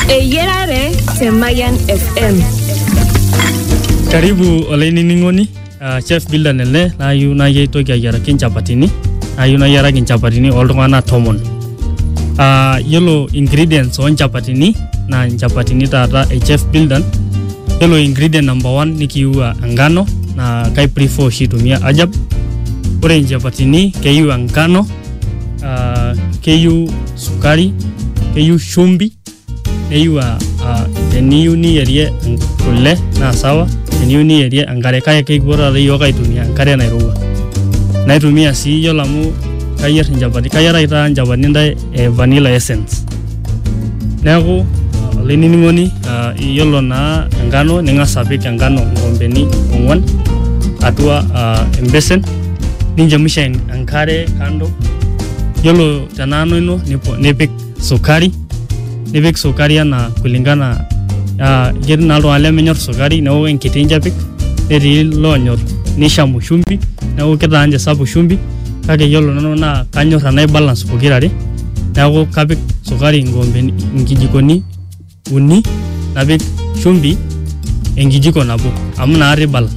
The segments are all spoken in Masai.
Eyiarare te Mayian FM. Karibu olainining'oni uh, chef Bilda Nele nayieu naaji aitoki ayiaraki nchapatini nayieu nayiaraki nchapatini oltung'anak tomon uh, yiolo ingredients onchapatini naa nchapatini taata e chef Bildan yiolo ingredient number one nikiiwa engano naa kai prefer oshi aitumia ajab ore nchapatini keyieu engano uh, keyieu sukari keyieu shumbi neyieu aa aa teniyieu niyierie kule naa sawa teniyieu niyierie enkare kake kekipuo taata iyiook aitumia enkare nairowua naitumia sii yiolo amu kayier inchapatini kayiaraki taata inchapatini intae e vanilla essence neeku olainining'oni aa iyiolo naa enkano ning'as apik enkano inkoombeni ong'uan atua aa embesen ninchemusha enkare kando yiolo te nanu ino nipo- nipik sukari nipik sukari anaa kulingana ah, ketii naa iltung'anak lemenyor sukari neeku enkiti inche epik netii loonyor nishamu shumbi neeku kitaa ninche sapuk shumbi kake yiolo nanu naa kanyor enai balance pokirare neeku kapik sukari inkoombeni inkijikoni uni napik shumbi enkijiko nabo amu inakata i balance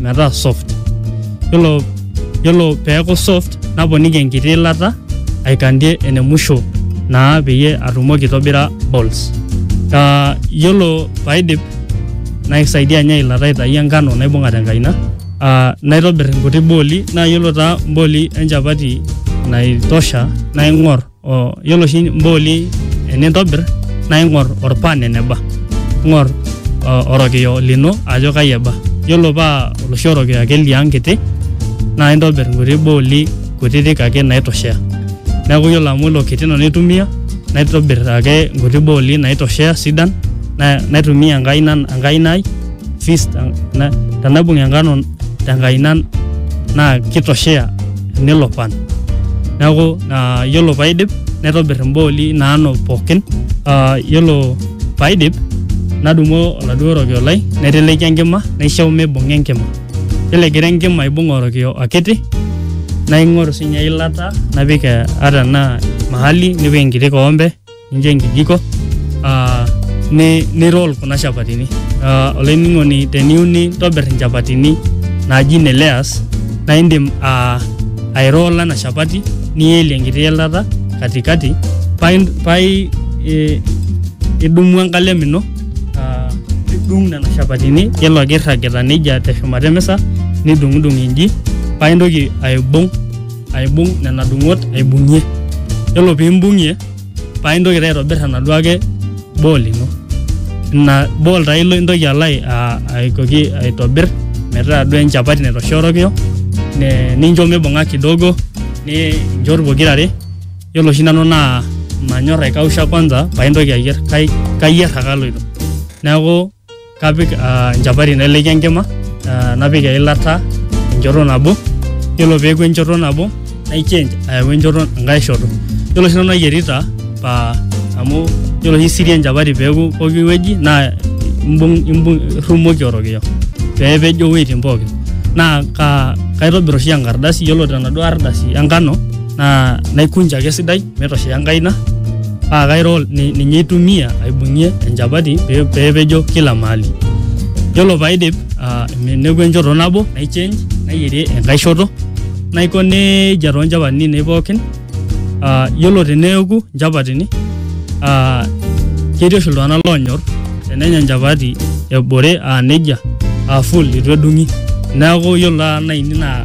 metaa soft yiolo yiolo peeku soft naponiki enkiti ilata aikandie ene musho naa peyie atumoki aitobira balls uh, yiolo paidip naisaidia ninye ilata aitai enkano naibung'a tenkaina uh, naitobir inkuti booli naa yiolo taa imbooli enchapati naitosha naing'or O, yiolo oshi imbooli enintobir naa ing'or orpan eneba ing'or o- orokiyo lino ajo kai eba yiolo paa oloshi orokiyo ake liang kiti naa intobir inkuti booli kutitik ake naitoshea neeku yiolo amu ilo kiti nanu aitumia naitobir ake inkuti booli naitoshea sidan na- naitumia enkaina enkaina ai fist na- tenaibung enkano tenkaina naa kitoshea nelo pan neeku ah, yiolo paidip naitobir imbooli naano pookin Ah, yiolo paidip nadumu oladuo rokio lai naiteleki enkima naishau mibung'a enkima yiolo egira enkima aibung orokio akiti naing'oru sinye eilata napik eh, ata enaa mahali nipik enkiti koombe nincho enkijiko ah, ni, ni roll kuna shapatini Ah, olainining'oni teniyieu nintobir inchapatini naaji ne layers naa indim ah, airolla ena shapati nielie enkiti ilata katikati paa in- paa i- i- idumu enkalem ino ah, nidung nena shapatini yiolo ake irragita nejia teshumata emisa nidung'udung inji paa intoki aibung aibung nena dung'ot aibung'ie yiolo piimbung'ie paa intoki taa aitobirr enaduo ake ball ino ina ball taa ilo intoki alo ai- a- aitoki aitobirr metaa duo enchapati naitoshorokio ne- nincho mibung'a kidogo ninchot pokirare yiolo oshi nanu naa manyorr aikausha kwanza paintoki ayierr kai- kayierr ake aloito neeku. Kapik uh, nchapati naileki enkima uh, napik eilata enchoto nabo yiolo peeku enchoto nabo nai change ayau enchoto enkae shoto yiolo oshi nanu ayierita pa amu yiolo oshi siri enchapati peeku poki wueji naa imbung imbung irrumoki orokiyo peepejo iwueitin pookin naa ka kaitobir oshi enkardasi yiolo tenaduo ardasi enkano naa naikunja ake esidai metoshea enkaina paa kairo ni- ninye aitumia aibung'ie enchapati pee pee epejo kila mahali yiolo paidip ah, neku enchoto nabo nai change nayierie enkae shoto naiko nejia toonchapatini ainei pookin Ah, yiolo teneeku nchapatini ah, ketii oshi iltung'anak loonyor tenenya enchapati ebore aa nejia aa full itu edung'i neeku yiolo taata naini naa